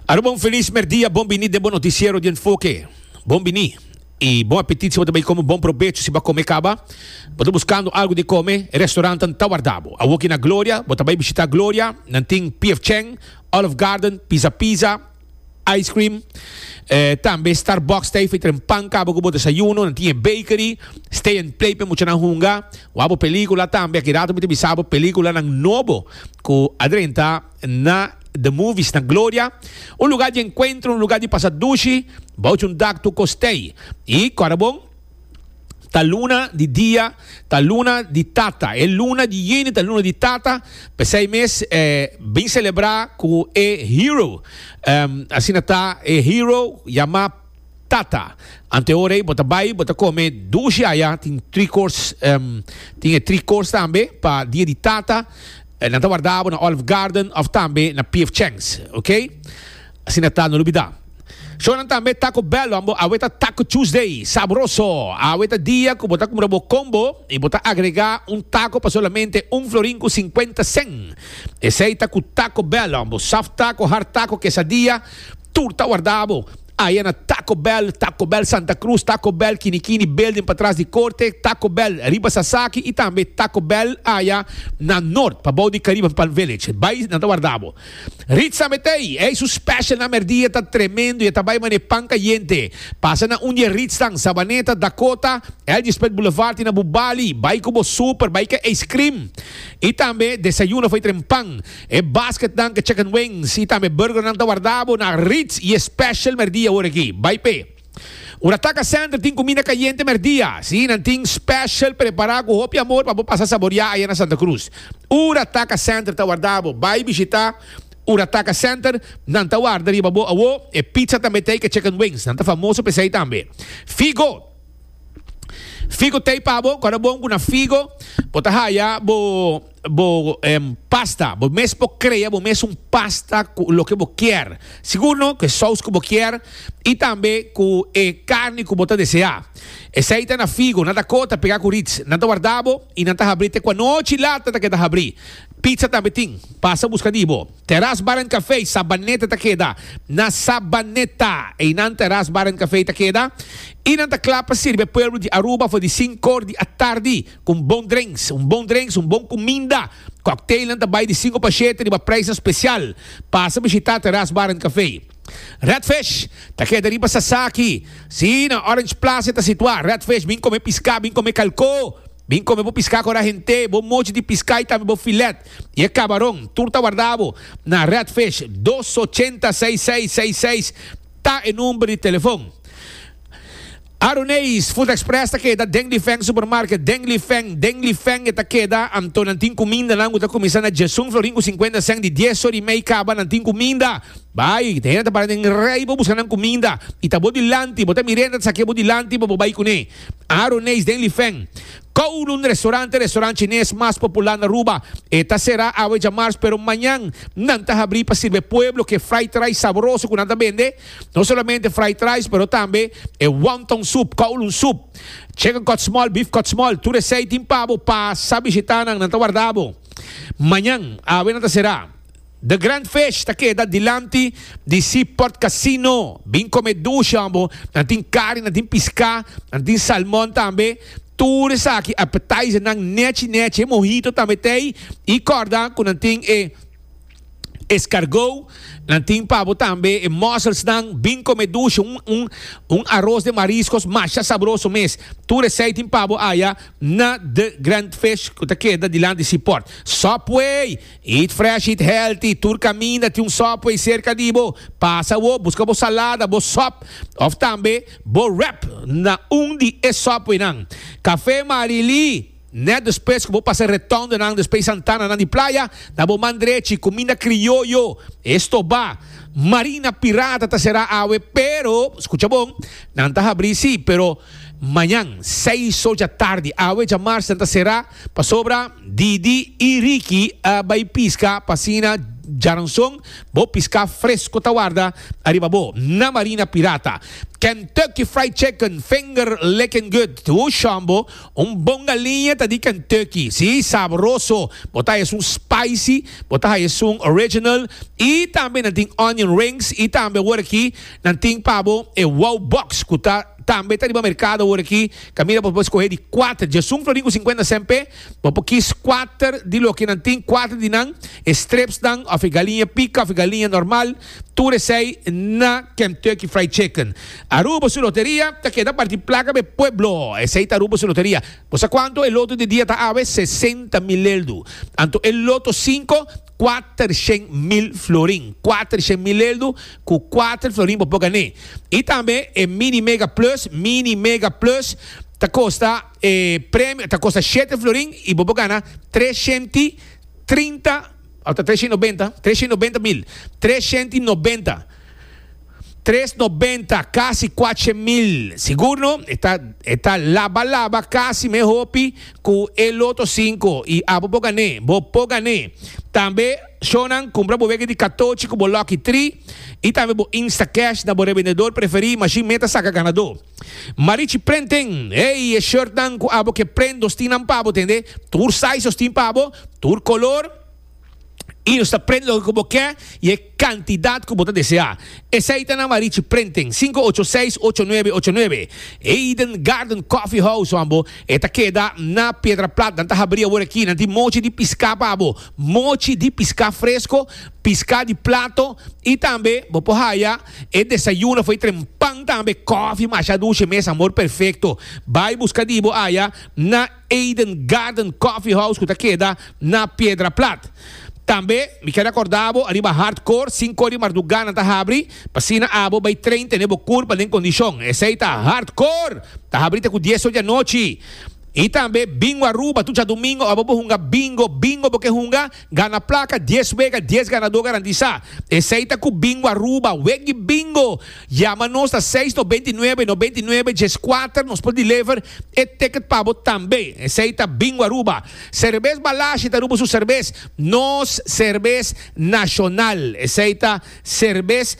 Aruba un feliz merdia, bon bini den bo noticiero di Enfoque. Bon bini y bon apetit si bo ta bay come bon probecho si bo a come caba. Bo ta buscando algo di come, e restaurantan ta warda bo. Awoki na Gloria, bo ta bay bishita Gloria, nan tin PF Chang, Olive Garden, Pizza Pizza, Ice cream, tambe Starbucks ta e fitra en pan cabo cu bo desayuno, nan tin e bakery, stay and play p'e muchanan hunga, wak bo pelicula tambe, aki rato mi ta bisa bo peliculanan nobo cu a drenta na The Movies na Gloria, un lugar di encuentro, un lugar di pasa dushi, bouch un dak tu ko stay y Corabon. Ta luna di dia, ta luna di tata. E luna di yeni ta luna di tata, p'esei mes e bin selebrá ku e hero. Asina ta, e hero yamá tata. Anteora ei bo ta bai, bo ta kome dushi aya, tin tri kors, tin e tri kors tambe pa dia di tata. Nan ta wardabo na Olive Garden òf tambe na PF Chang's, oke. Asina ta, no lubidá. Shownan tambe ta ku bèl wan bo. Awe ta Taco Tuesday. Sabroso! Awe ta dia ku bo ta kumpra bo combo i bo ta agregá un tako pa solamente un florin ku sinkuenta sen. Esei ta ku Taco Bell wan bo. Soft tako, hard tako, kesadia, tur ta wardá bo. Aya na Taco Bell, Taco Bell Santa Cruz, Taco Bell Kinikini Building patras di korte, Taco Bell riba Sasaki i tambe Taco Bell aya na Nort pabou di Caribe Palm Village. Bai, nan ta wardá bo. Rit sa metai, ey su special na merdia ta tremendo y e ta bay mane pan cayente. Pasa na un di e ritsnan, Sabaneta, Dakota, Elgispert Boulevard y na bu bali, bay cu bo super, bay ke ice cream. Y tambe desayuno fay tren pan, e basketnan ke chicken wings y tambe burgernan ta warda bo na Ritz y e special merdia ora aki. Bay pe. Ora Taca Center tin cuminda cayente merdia, si, nan tin special prepara cu hopi amor pa bo pasa saboria aya na Santa Cruz. Ora Taca Center ta warda bo, bay bishita Ora Taca Center, nan ta warda riba bo awo e pizza tambe tei ca chicken wings, nan ta famoso pa esey tambe. Figo, Figo tei pa bo, cora bon cu na Figo bo ta haya bo. Bo em pasta, bo mes por crea bo mes un pasta cu loke bo kier, sigur no, cu e saus cu bo kier y tambe cu e carni cu bo ta desea. Esey ta na figo, nan ta coho, ta pega cu rits, nan ta warda bo y nan ta habri te cu anochi lata ta keda habri. Pizza tambe tin, pasa busca di bo. Terras Bar and Café Sabaneta ta keda na Sabaneta, eynan Terras Bar and Café ta keda y nan ta cla pa sirbi e pueblo di Aruba for di sink or di atardi. ku un bon drenks, un bon drenks, un bon kuminda. Kòkteilnan ta bai di sinku pa shete riba preisnan spesial. Pasa bishitá Teras Bar and Café. Redfish ta keda riba Sasaki. Sí, na Orange Plaza e ta situá. Redfish, bin kome piská, bin kome kalkó, bin kome bo piská kora hent'é, bo mochi di piská i tambe bo filèt i e kabaron. Tur ta warda bo na Redfish. Dos ochenta seis seis seis seis ta e number di telefòn. Aruneis, Food Express ta keda den Lifeng Supermarket, den Lifeng, den Lifeng e ta keda, anto nan tin kumindanan ku ta kuminsá na Jesun Florin ku sinkuenta sèn di dies sor i mei kaba, nan tin kuminda. Bai, te hende ta para den rei pa buska nan kuminda, i ta bo dilanti, bo ta mir'é hende ta sake'é bo dilanti pa bo bai kuné. Aruneis, den Lifeng, Kowloon Restaurant e restaurant chines mas populá na Aruba, e ta será awe djamars, pero mañan nan ta habrí pa sirbe pueblo ke fried rice sabroso ku nan ta bende, No solamente fried rice pero tambe e wonton soup, kowloon soup, chicken cut small, beef cut small, tur esey tin pa bo pasa bishita nan, nan ta warda bo. Mañan, awe nan ta será. The Grand Fish ta keda dilanti di Seaport Casino. Bin come dushi hombo. Nan tin kari, nan tin piská, nan tin salmon tambe. Tur esaki appetizer nan nechi nechi, e mojito tambe tey. I korda ku nan tin e. Escargo nan tin pabo tambe e mussels nan bin come dushi un aros de mariscos masha sabroso mes tur esey tin pabo aya na the grand fish cu ta keda dilant di sea port Subway eat fresh eat healthy tur caminda tin un Subway cerca di bo pasa awo busca bo salada bo sop of tambe bo wrap na un di e Subway nan Cafe Marilí. Net despues ku bo pasa retondonan despe e santananan di playa, na bo man drechi, kuminda krioyo, e stobá. Marina Pirata ta será awe, pero, skucha bon, nan ta habrí sí, pero mañan seis or dja tardi. Awe djamars nan ta será pasobra Didi i Ricky a bai piska, pa asina djaranson bo piská fresko ta warda ariba bo na Marina Pirata. Kentucky Fried Chicken, Finger Lickin' Good, Wooshambo, Un bon galiña ta di Kentucky, si, sabroso, bo ta haya esun spicy, bo ta haya esun original, y tambe nan tin onion rings y tambe awor aki nan tin pa bo e Wow Box cu ta tambe ta riba mercado awor aki, ta mira bo por scoge di cuater djesun florin cu cincuenta cmp, bo por kis cuater di loke nan tin, cuater di nan e strips nan of e galiña pica of e galiña normal. Tur esei na Kentucky Fried Chicken. Aruba su loteria ta keda parti plaka be pueblo. Esei ta Aruba su loteria. Bo sa kuantu e loto di dia ta awe? Sesenta mil leldu. Anto e loto sinku? Kuatershen mil florin. Kuatershen mil leldu ku kuater florin bo por gané. I tambe e Mini Mega Plus, Mini Mega Plus, ta kosta e premio ta kosta shete florin i bo por gana treshenti trinta. Ata tres shent i nobenta, tres shent i nobenta mil, tres shent i nobenta, tres nobenta, casi cuatshent mil. Sigur no? E ta, e ta laba laba casi me hopi cu e loto cinco y abo bo gané. Bo por gané. Tambe shonan cumpra bo wege di catochi cu bo lucky three y tambe bo Instacash na bo revendedor preferi, machine meta saca ganador. Marichi prenten, ey e shortnan cu abo ke prendos tin nan pabo tende, tur sizes tin pabo, tur color, y nos ta prent loke cu bo ke y e cantidad cu bo ta desea. Esey ta na Marichi Prenten, cinco ocho seis ocho nuebe ocho nuebe, Eden Garden Coffee House wan bo, e ta keda na Piedra Plat, nan ta habri awor aki, nan tin mochi di pisca pa bo, mochi di pisca fresco, pisca di plato y tambe bo por haya. E desayuno foi tren pan tambe kòfi masha dushe mes amor perfekto bai buska di bo aya na Eden Garden Coffee House ku ta keda na Piedra Plat tambe mi ker akorda bo ariba hard core sinku di marduga nan ta habri pasina abo bai train tene bo kurpa den kondishon esei ta hard core ta habri te ku dies ocho di anochi i tambe bingo Aruba tu djadumingo abo bo hunga bingo bingo bo ke hunga Gana plaka dies wega dies ganadó garantisá. Esei ta ku Bingo Aruba. Weggi Bingo! Yama nos na seis no beinti nuebe no beinti nuebe djes kuater nos por deliver e ticket pa bo tambe. Esei ta Bingo Aruba. Serbes Balashi ta Aruba su serbes. Nos serbes nashonal. Esei ta serbes.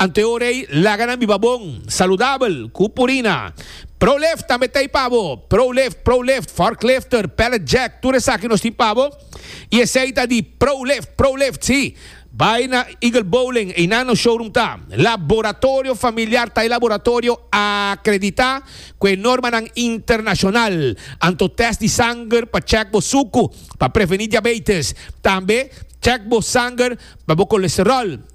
Ante ora ei, laga nan biba bon, saludabel, ku purina. Prolift tambe ta ei pa bo. Prolift, Prolift, Forklifter, Pallet Jack, tur esaki nos tin pa bo. I esei ta di Prolift, Prolift, si. Bai na Eagle Bowling, einan nos showroom ta. Laboratorio familiar ta e laboratorio akreditá ku e normanan internashonal. Anto tèst di sanger pa chèk bo suku pa prevení diabeites. Tambe chèk bo sanger pa bo kolesteròl.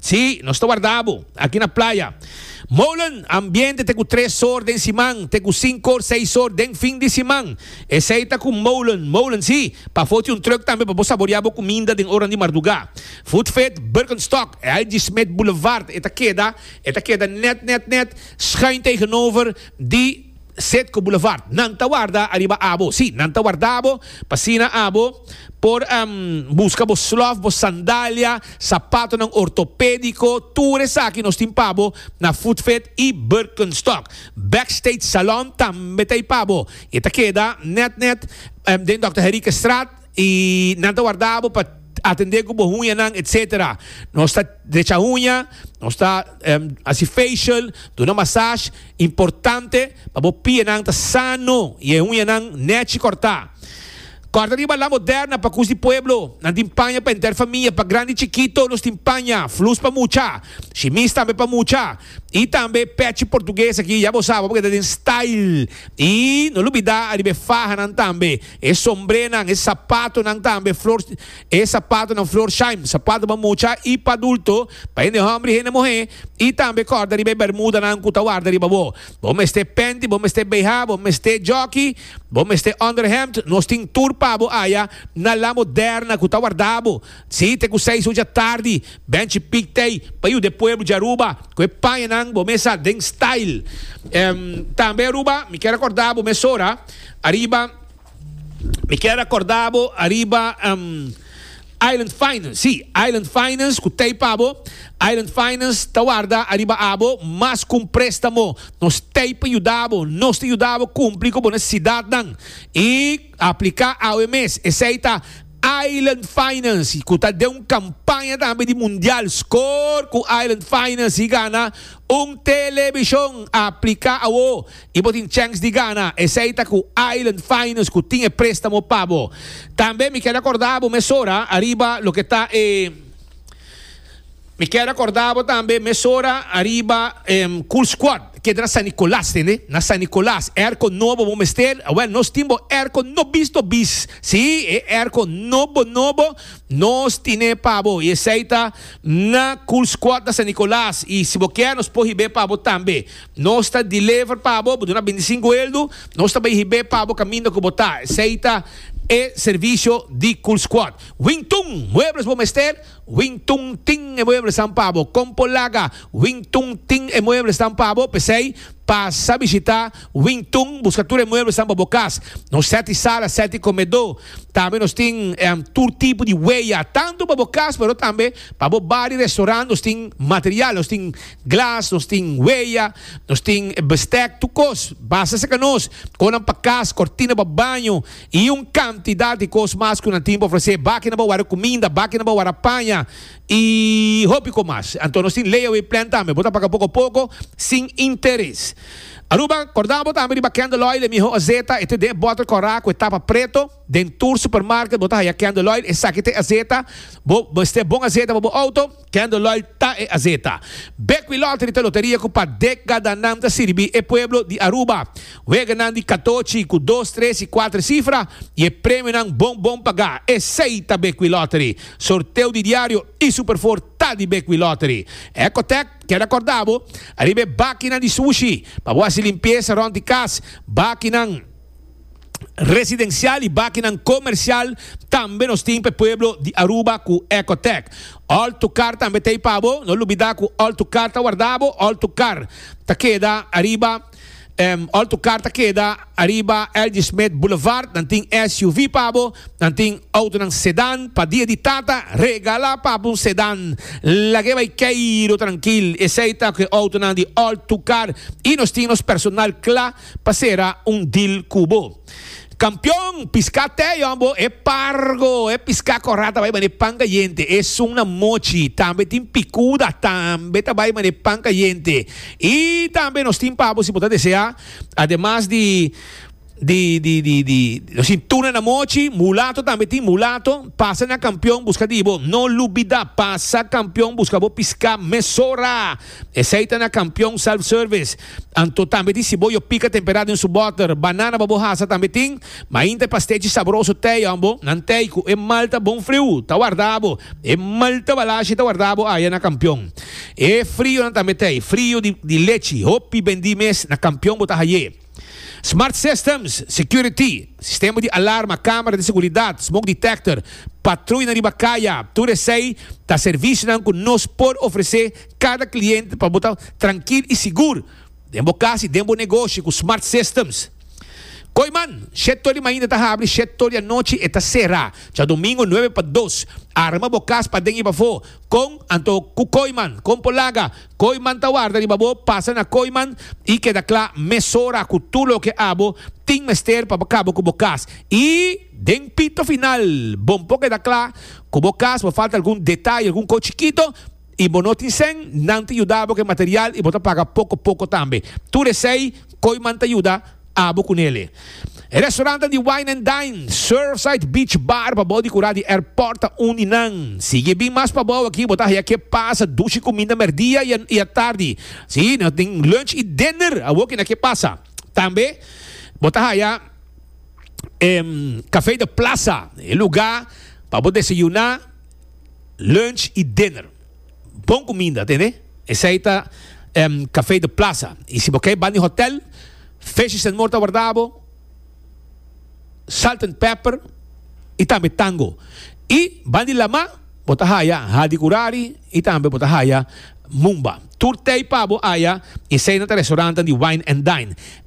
Sí, nos ta warda bo aki na playa. Molen ambiente te ku tres or den siman te ku sinku or seis or den fin di siman. Esei ta ku molen, molen sí, pafó tin un truck tambe pa bo saboreá bo kuminda den ornan di mardugá. Food Fit Birkenstock, L.G. Smit Boulevard, e ta keda, e ta keda nèt, nèt, nèt, schuin tegenover di. Cedco Boulevard. Nan ta warda ariba abo. Sí, nan ta warda bo pa asina abo por busca bo slof, bo sandalia, sapatonan ortopédico, tur esaki nos tin pa bo na Foodfit y Birkenstock. Backstage Salon tambe ta ey pa bo y e ta keda net net den Dòkter Henriquestraat. Y nan ta warda bo pa atende cu bo huñanan etc. Nos ta drecha huña, nos ta haci facial, duna massage. Importante pa bo pienan ta sano y e huñanan nechi corta. Corta riba La Moderna pa cus di pueblo. Nan tin paña pa enter famia, pa grandi y chikito nos tin paña. Flus pa mucha, shimis tambe pa mucha. Y tambe pechi portugues aki ya bo sa bo keda den style. Y no lo bida ariba e fahanan tambe. E sombrenan, e sapatonan tambe flor e sapatonan Florsheim, sapato pa mucha i pa adulto, pa hende hòmber i hende muhé, i tambe kòrda riba e bermudanan ku ta warda riba bo. Bo mester penti, bo mester bh, bo mester jòki, bo mester ònderhèmt, nos tin tur pa bo aya na La Moderna ku ta warda bo sí te ku seis ocha tardi. Bènchi Pic Tei pa yuda e pueblo di Aruba ku e pañanan bo mesa den style. Tambe Aruba, mi kier akòrda bo mesora. Ariba, mi kier acorda bo ariba um, Island Finance, si, Island Finance cu tey pa bo, Island Finance ta warda ariba abo mas cu un prestamo, nos tey pa yuda bo, nos ta yuda bo cumpli cu bo necesidadnan y aplica awe mes, esey ta Island Finance cu ta den un campaña tambe di Mundial Score cu Island Finance y gana un television, aplica awo y bo tin chèns di gana, esei ta cu Island Finance cu tin e préstamo pa bo. Tambe mi keda corda bo mesora ariba loke ta e Mi keda corda bo tambe mesora ariba e Cool Squad, keda na San Nicolas, tende? Na San Nicolas, airco nobo bo mester, awel nos tin bo airco no bis no bis, si, e airco nobo nobo nos tine pa bo y esei ta na Cool Squad na San Nicolas y si bo kier nos por hib'e pa bo tambe. Nos ta deliver pa bo, bo duna bendicin cu eldu, nos ta bai hib'é pa bo caminda cu bo ta, esey ta e servicio di Cool Squad. Wing Tun, muebles bo mester? Wing Tun tin e mueblesnan pa bo. Compo Laga, Wing Tun tin e mueblesnan pa bo, p'esey pasa bishita Wing Tun, busca tur e mueblesnan pa bo cas. Nos seti sala, seti comedor, tambe nos tin tur tipo di weya, tanto pa bo cas pero tambe pa bo bar y restaurant, nos tin material, nos tin. Glas, nos tin weya, nos tin bestek, tur kos. Basta saka nos, konan pa kas, kortina pa baño i un kantidat di kos mas ku nan tin pa ofresé. Bakinan pa wara kuminda, bakinan pa wara paña i hopi kos mas. Anto nos tin layaway plan tambe. Bo ta paga poko a poko sin interes. Aruba, Kòrda bo tambe di ba Candle Oil, e mihó azeta. E ta den e bòtel kòrá ku e tapa preto. Den tur supermarket bo ta haya Candle Oil. Esaki ta e azeta bo mester, bon azeta pa bo outo. Kendall Lloyd ta e azeta. Bekwee Lottery ta loteria ku pa dekadannan ta sirbi e pueblo di Aruba. Weganan di katochi ku dos, tres i kuater sifra i e premionan bon bon pagá. Esei ta Bekwee Lottery. Sorteo di diario i Super Four ta di Bekwee Lottery. Ecotec keda kòrda bo, ariba e bakinan di sushi, pa bo hasi limpiesa rònt di kas, bakinan, residencial y bakinan comercial tambe nos tin p'e pueblo di Aruba cu Ecotec. All tu car tambe t'ey pa bo, no lubida cu all tu car ta warda bo, all tu car ta keda ariba em all tu car ta keda ariba LG Smith Boulevard, nan tin SUV pa bo, nan tin autonan sedan, pa dia di tata regala papu un sedan, lag'e bay key ro trankil, esey ta cu e autonan di all tu car y nos tin nos personal cla. Pa sera un deal cu bo. Campeon, pisca te yon bo e pargo, e pisca cora ta bay mane pan cayente, esun na mochi, tambe tin picuda, tambe ta bay mane pan cayente. Y tambe nos tin pa bo si bo ta desea, ademas di, di, di, di, di, nos tin tuna na mochi, mulato tambe tin mulato, pasa na Campeon busca di bo. No lubida, pasa Campeon busca bo pisca mesora. Esei ta na Kampion Self Service. Anto tambe tin siboyo pika temperá den su bòter. Banana pa bo hasa tambe tin. Mainta e pastechi sabroso tei òn bo. Nan tei ku e malta bon friu ta warda bo. E malta balashi ta warda bo aya na Kampion. E frionan tambe tei. Frio di lechi. Hopi bendí mes na Kampion bo ta haié. Smart systems, security, sistema di alarma, kamera di seguridat, smoke detector, patruya na riba kaya, tur esei ta servisionan ku nos por ofresé kada kliente pa bo ta trankil i sigur den bo kas i den bo negoshi ku smart systems. Koiman, Shet Toli mainta ta habri, Shet Toli anochi e ta sera. Djadomingo nuebe pa dos. Arma bo kas pa den i pafó. Kon? Anto ku Koiman, kon por laga? Kooiman ta warda riba bo, pasa na Kooiman i keda kla mesora ku tur loke abo tin mester pa bo kabo ku bo kas. I den pito final bon por keda kla ku bo kas por falta algun detaye, algun kos chikito i bo no tin sen, nan ta yuda bo ku e material i bo ta paga poko poko tambe. Tur esei Kooiman ta yuda. Abo cu Nele. E restaurantan di Wine and Dine, Surfside Beach Bar pabao di cura di airport ta un di nan. Si y e bin mas pabao aki bo ta haya ke pasa dushi cuminda merdia y atardi. Si, nos tin lunch y dinner awo ki na ke pasa. Tambe bo ta haya e Café de Plaza, e lugar pa bo desayuna, lunch y dinner. Bon cuminda, atende? Esey ta Café de Plaza. Y si bo key bandi hotel, Fishes and More ta warda bo, Salt and Pepper y tambe Tango. Y bandi lama, bo ta haya Hadi Curari y tambe bo ta haya Mumba. Tur tey pa bo aya y esey nan ta restauranten di Wine and Dine.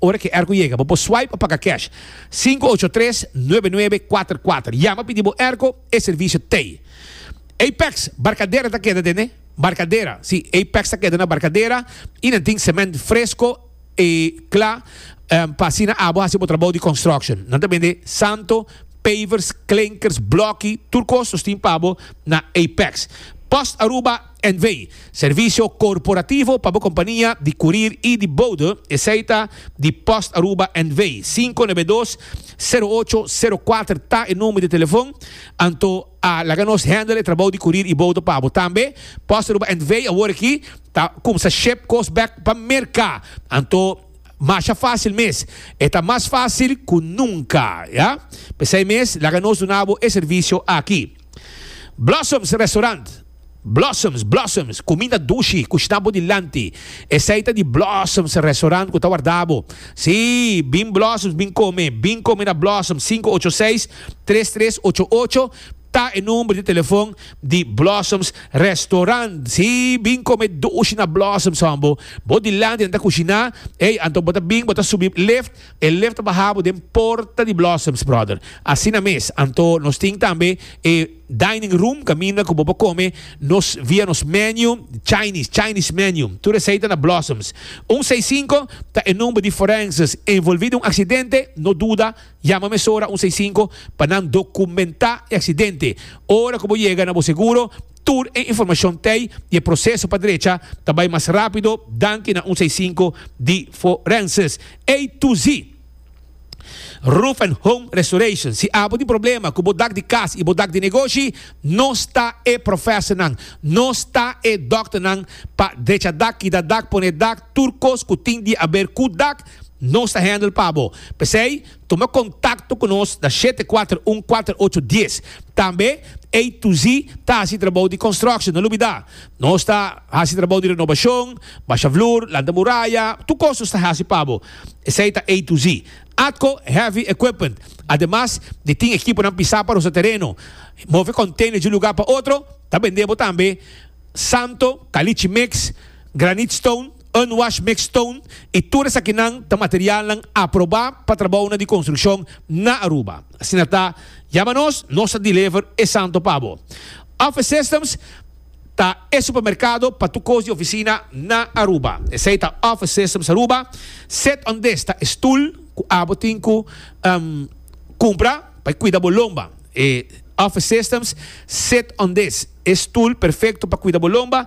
Ora ki airco yega, bo por swipe pa paga cash. Sinku ocho tres, nuebe nuebe, kuater kuater. Yama pidi bo airco e servicio tey. Apex Barcadera ta keda den e Barcadera. Si, Apex ta keda na Barcadera y nan tin cement fresco y cla pa asina abo haci bo trabao di construction. Nan ta bende santo, pavers, klinkers, bloki, tur cos nos tin pa bo na Apex. Post Aruba. NV, Servisio korporativo pa bo kompania di kurir i di boude, esei ta di Post Aruba NV. Sinku nebe dos, sero ocho, sero kuater ta e number di telefon. Anto a laga nos handle e trabou di kurir i boude pa bo. Tambe Post Aruba NV awor aki ta kumsa ship kos bek pa Merka. Anto masha fasil mes. E ta mas fasil ku nunka, ya. P'esei mes laga nos duna bo e servisio aki. Blossoms Restaurant Blossoms Blossoms Cuminda dushi cu shna bo dilanti Esai ta di Blossoms Restaurant cu ta warda bo Sí, bin Blossoms bin come Bin come na Blossoms sinku ocho seis, tres tres ocho ocho Ta e number di telefon di Blossoms Restaurant Sí, bin come dushi na Blossoms hombo Bo dilanti nan ta cushina Ey, anto bo ta bin bo ta subi Lift, E lef ta baha bo den porta di Blossoms, brother. Asina mes. Anto nos tin tambe e dining room kaminda ku bo por kome nos via nos menu di Chinese, Chinese menu. Tur esei ta na Blossoms. Un seis sinku ta e number di forenses envolvi den un aksidente. No duda, yama mesora un seis sinku pa nan dokumentá e aksidente. Ora ku bo yega na bo seguro, Tur e informashon t'ei i e proseso pa drecha ta bai mas rápido danki na un seisinku di forenses. A to Z Roof and Home Restoration, Si abo tin problema ku bo dak di kas i bo dak di negoshi, nos ta e profèsonan, nos ta e dòkternan pa drecha dak, kita dak, pone dak, tur kos ku tin di aber ku dak, nos ta hèndel pa bo. P'esei, Tuma kontakto ku nos na shete kuater un kuater ocho dies. Tambe A to Z ta hasi trabou di konstruksyon. No lubidá, nos ta hasi trabou di renobashon, basha vloer, lanta muraya, tur kos nos ta hasi pa bo. Esei ta A to Z. Atco Heavy Equipment, ademas di tin ekiponan pisá pa rosa tereno, move konteinernan di un lugá pa otro, ta bendé bo tambe santo, kalichi mix, Granite stone, unwashed mixed stone y tur esakinan ta materialnan aprobá pa trabounan di construccion na Aruba. Asina ta, yama nos, nos ta deliver esanto pa bo. Office Systems ta e supermercado pa tur cos di oficina na Aruba. Esey ta Office Systems Aruba. Sit on this ta e stoel cu abo tin cu cumpra pa e cuida bo lomba. E Office Systems Sit on this, e stoel perfecto pa cuida bo lomba.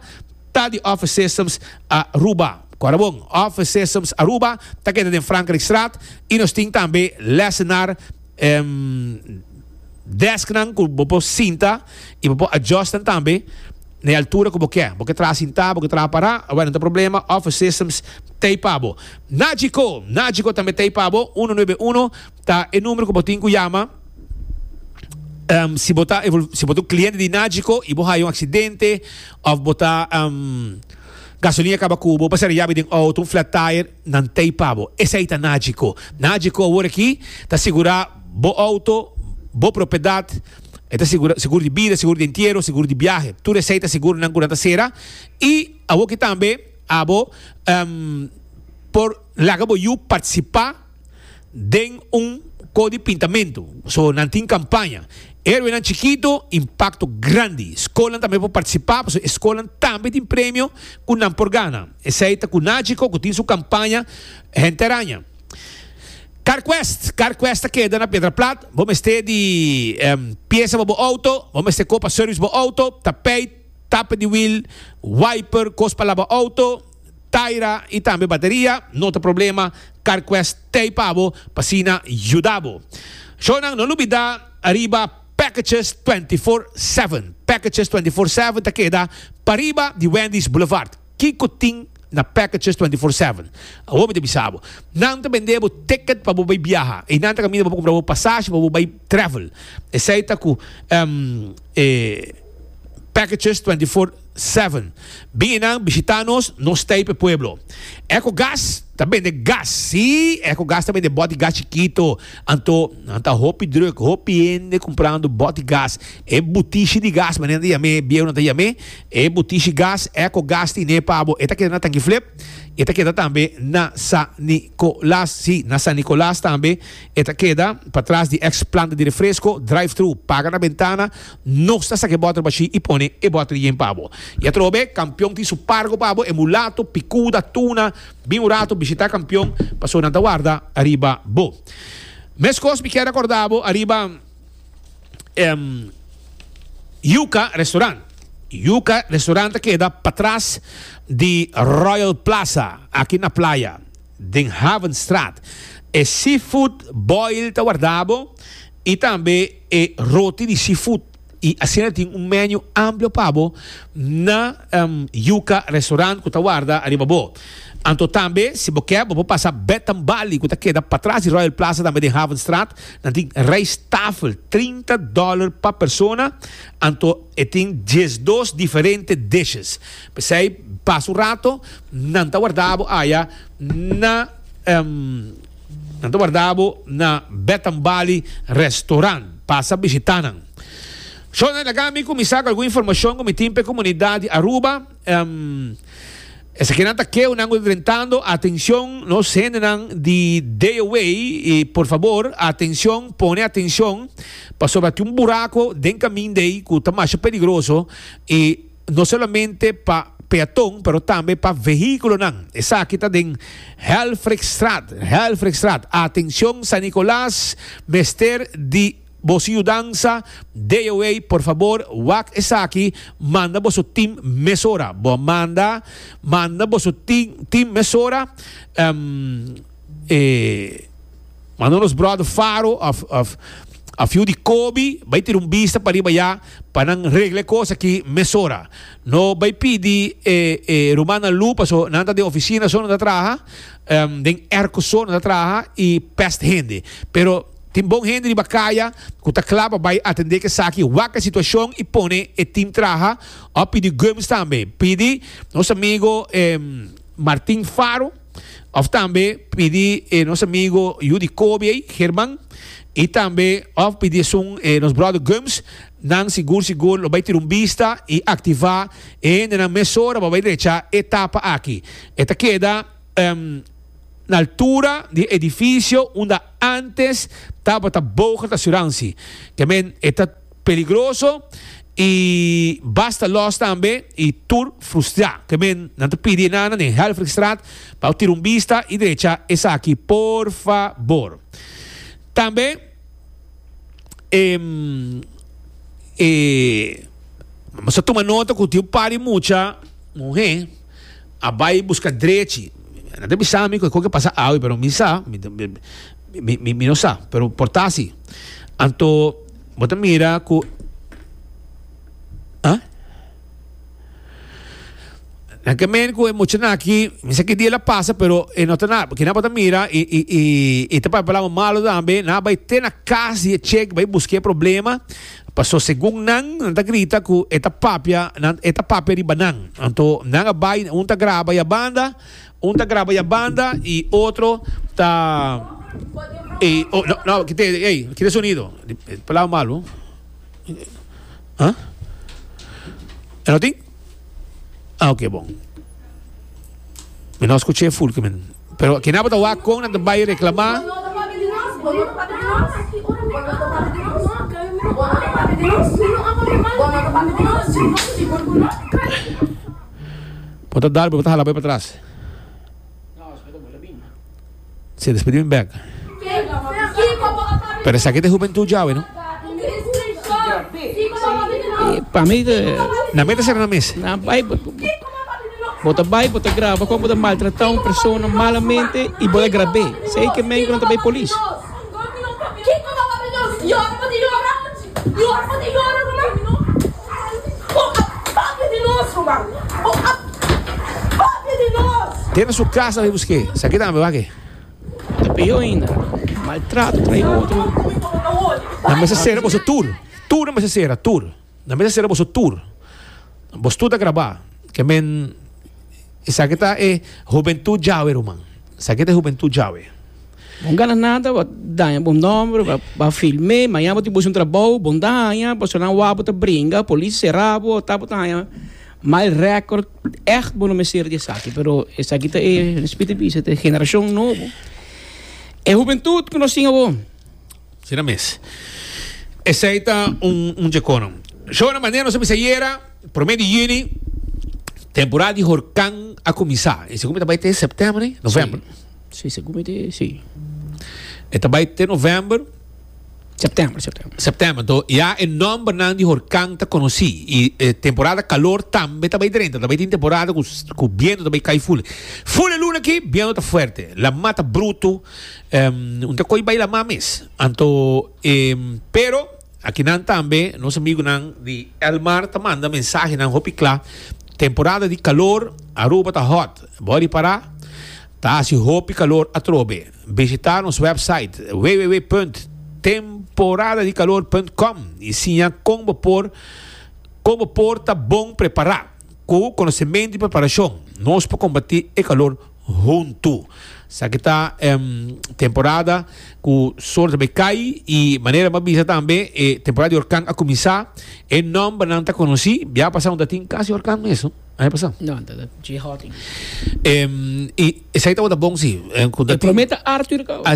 Ta di Office Systems Aruba. Kòrda bon, Office Systems Aruba ta keda den Frankrikstraat i nos tin tambe lèsenar, em, dèsknan ku bo por sinta i bo por adjòstan tambe na e altura ku bo ke. Bo ke traha sintá, bo ke traha pará, awèn, no ta problema, Office Systems ta ei pa bo. Nagico, Nagico tambe ta ei pa bo, uno nuebe uno. Ta e numero ku bo tin ku yama si bo ta si bo ta un kliente di Nagico i bo haya un aksidente òf bo ta gasolina kaba ku bo pasara yabi den outo un flat tire nan tei pa bo esei ta Nagico Nagico awor aki ta sigurá bo outo bo propiedat e ta sigurá sigur di bida sigur di entiero sigur di biahe tur esei ta sigurnan ku nan ta sera i awor aki tambe abo por laga bo yu partisipá. den un ko di pintamentu. So nan tin kampaña Herwenan Chikito, impakto grandi. Skolnan tambe por partisipá pasobra e skolnan tambe tin premio ku nan por gana. Esei ta Kunachiko ku tin su kampaña Hente Araña. Carquest, Carquest ta keda na Piedraplat. Bo mester di piesa pa bo outo, bo mester ko pa sèrvis bo outo, tapeit, tape di wiel, wiper, kos pa laba outo. Taira y tambe bateria no ta problema car cuest tey pa bo pa sina yuda bo shonan no lubida ariba packages twenty four seven packages twenty four seven ta keda pariba di Wendy's Boulevard kico tin na packages twenty four seven awo mi ta bisa bo nan ta bende bo ticket pa bo bay biaha y nan ta caminda pa bo cumpra bo pasashi pa bo bay travel esey ta cu packages twenty four Seven, Biinan bishitá nos, nos stay p'e pueblo. Ecogas ta bende gas, sí, Ecogas ta bende bot di gas chikito, anto nan ta hopi druk, hopi hende kumprando bot di gas. E butishi di gas, manera nan ta yam'é, bieu nan ta yam'é, e butishi gas, Ecogas tin'é pa bo. E ta keda na Tangiflip, e ta keda tambe na San Nicolas, sí, na San Nicolas tambe e ta keda, patras di eks planta di refresko, drive-thru, paga na bentana, Nos ta saca e botro bashi y pone e botro yen pa bo. Y atroba bek, Campeon tin su pargo pa bo, e mulato, picuda, tuna. Bin un rato bishita Campeon, pasobra nan ta warda ariba bo. Mescos mi kier acorda bo ariba Yuca Restaurant. Yuca Restaurant ta keda patras di Royal Plaza, aki na Playa, den Havenstraat. E seafood boil ta warda bo, y tambe e roti di seafood y asina tin un menu amplio pa bo na Yuca Restaurant cu ta warda ariba bo. Anto tambe si bo ke bo por pasa Bed and Bali cu ta keda patras di Royal Plaza tambe den Havenstraat, nan tin rijsttafel trinta dollar pa persona anto e tin diesdos diferente dishes. P'esey pasa un rato nan ta warda bo aya na. Nan ta warda bo na Bet and Bali Restaurant. Pasa bishita nan. Sho nan laga mi kuminsá ku algun informashon ku mi tin pa e komunidat di Aruba. Esakinan ta keunan ku ta drentando atenshon nos hendenan di Deoway i por fabor atenshon pone atenshon pasobra tin un burako den kaminda ei ku ta masha peligroso i no solamente pa peaton pero tambe pa vehiculonan. Esaki ta den Helfrichstraat, Helfrichstraat. Atencion San Nicolas, mester di boso yudansa, DOA por fabor wak esaki, manda boso team mesora. Bo manda, manda boso team mesora, ehm, e. Manda nos brother Faro of of a few di Coby bay tira un bista pariba ya pa nan regla e cos aki mesora. No bay pidi e e rumannan lu paso nan ta den oficina so nan ta traha, em den erco so nan ta traha y pest hende. Pero tin bon hende riba caya cu ta cla pa bay atende cu esaki, waca e situacion y pone e team traha of pidi gums tambe. Pidi nos amigo em Martin Faro. Of tambe pidi e nos amigo yu di Kobe ei, Herman, i tambe of pidi esun e nos bròder Gums, nan sigur sigur lo bai tira un bista i aktivá e hendenan mesora pa bai drechá e tapa aki. E ta keda na altura di e edifisio unda ántes tabata Bogert Asuransi. Ke men e ta. Peligroso y basta los tambe y tur frustra. Ke men nan ta pidi enana den Helfrichstraat pa bo tira un bista y drecha esaki por fabor. Tambe nos a tuma nota cu tin un par di mucha muhe a bay busca drechi. Nan ta bisa mi cu esco ke pasa awe pero mi sa mi no sa pero por ta asi anto. Bo ta mira ku ah? Nan ke men ku e muchanan aki, misa ki dia el a pasa, pero e no ta na, kina bo ta mira, i, i, i, i ta papia palabra malu tambe, nan a bai te na kas di e chek bai busk'é problema, paso segun nan, nan ta grita ku e ta papia, nan, e ta papia riba nan. Anto nan a bai, un ta graba ya banda, Un ta graba ya banda y otro ta e oh no no kite ey kite sonido palabra malo ah e no tin ah ok bon mi no scuche e fulke men pero kende abo ta wak con nan ta bay reclama Bo ta dar, bo ta hala bo e patras. Si e despediu in bek. Pero esaki ta e hubentud djawe no. Pa mi. Na meta sera na mes. Na bai bo ta bai bo ta graba como bo ta maltrata un persona malamente y bo ta grabe sey kimen ku nan ta bai polis. Dentro su casa mi busqué. Sa ke tambe wak e. Ta peor ainda. Maltrato trae otro. Nan mester cera boso tur. Tur nan mester cera, tur. Nan mester cera boso tur. Bos tur ta graba. Ke men esaki ta e hubentud djawe ruman. Esaki ta e hubentud djawe. Bon gana nada pa daña bo nomber pa pa filme mañana bo tin busca un trabou bon daña pasobra nan wou bo ta bringa polis cera bo ota bo ta haña mal record echt bo no mester di esaki pero esaki ta e Smith a bisa ta e generacion nobo e hubentud cu nos tin awor. Asina mes. Esey ta un un djecono. Shona manera nos a bisa ayera, prome di juni, temporada di horcan a cuminsa. Y segun mi ta bay te september, november. Sí. Sí, segun mi te sí. E ta bai te november. September, september. September, to ya e nombernan di horkan ta konosí. I e temporada kalor tambe ta bai drenta. Ta bai tin temporada ku ku bientu ta bai kai ful. Ful e luna akí, bientu ta fuerte, lamá ta brutu, un ta koi bai lamá mes. Anto e, pero akí nan tambe nos amigunan di Elmar ta manda mensahenan hopi kla, temporada di kalor Aruba ta hot, bo a ripará. Ta hasi hopi kalor atrobe. Bishita nos website www.temporadadicalor.com y siña con bo por con bo por ta bon prepara. Cu conocementu y preparacion nos por combati e calor huntu. Saki ta em temporada cu sol ta bay cay y manera bo bisa tambe e temporada di hurcan a cuminsa. E nombernan ta conoci. Bia pasa unda tin casi hurcan mes. A he pasá? No, ta ta J Hawking. Em, y esai tabata bon si. Em, con E dat- prometa Arthur ka. Ah,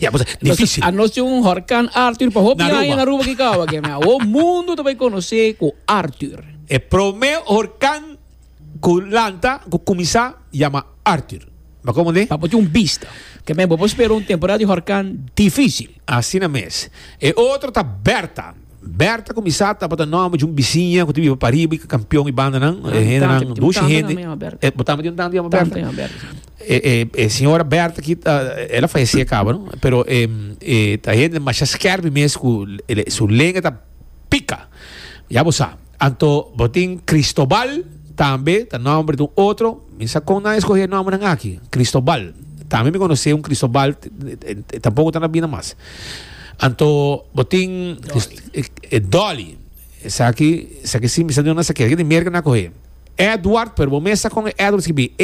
ya cosa difícil. A nos tin un horkan Arthur pa hopi Na aña Aruba. na Aruba ki kawa ke mea. O mundo ta bai konosé ku Arthur. E promé horkan ku lanta, ku kuminsá, yama Arthur. M'a komprendé? Pa bo tin un bista. Ke mea bo por spera un temporada di horkan difícil. Asina mes. E otro ta Bertha. Berta ku Misá tabata nòmber di un bisiña ku ta biba pariba i ka kampion i bandanan. E hendenan, dushi hende. Bo tambe tin un tanta yama Berta? E señora Berta ki ta, el a falesé kaba, no? Pero e ta hende masha skèrpi mes ku su lenga ta pika. Ya bo sa. Anto bo tin Cristobal tambe ta nomber di un otro mi sa con nan e scoge e nombernan aki Cristobal tambe mi conoce un Cristobal e tampoco ta na bida mas anto bo tin Dolly esaki esaki si mi sa duna esaki di Merca nan a coge Edward pero bo mester sa con e Edward skibi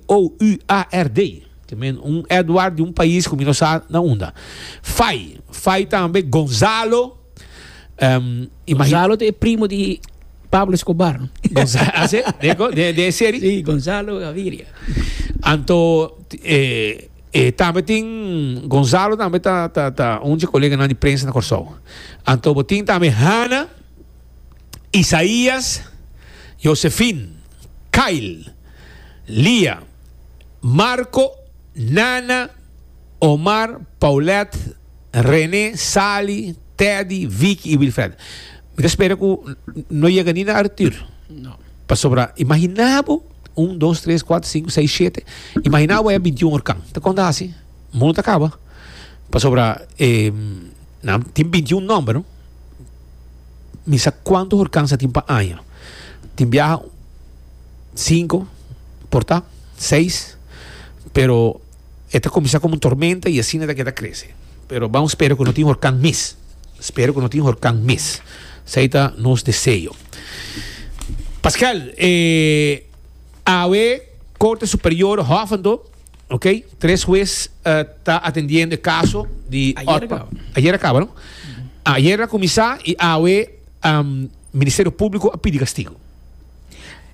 ADOUARD te men un Edward di un pais cu mi no sa na unda Fai Fai tambe Gonzalo. Um, Gonzalo te primo di Pablo Escobar. Gonzalo, ah, de, de, de serie? Sí, Gonzalo Gaviria. Anto, eh, eh, tambe tin Gonzalo tambe ta ta ta un colega na di prensa na Corsou. Anto botin tambe Hanna, Isaías, Josephine, Kyle, Lia, Marco, Nana, Omar, Paulette, Rene, Sali, Teddy, Vicky y Wilfred. Mi ta spera cu no yega ni na Arthur. No. Pasobra, imagina bo, un, dos, tres, cuatro, cinco, seis, siete. Imagina bo e bintiun or can. Ta conta haci? Mundo ta caba. Pasobra, eh, nan tin bintiun nomber, no? Mi sa cuanto or can sa tin pa aña. Tin biaha cinco, porta seis, pero. E ta kuminsá komo un tormenta i asina ta keda krese. Pero bou spera ku no tin horkan mes. Spera ku no tin horkan mes. Esei ta nos deseo. Pascal, e awe Korte Superior Hoofddorp, ok, tres hues ta atendiendo e kaso di Otmar. Ayer akaba. Ayer akaba, no? Ayer a kuminsá i awe Ministerio Públiko a pidi kastigu.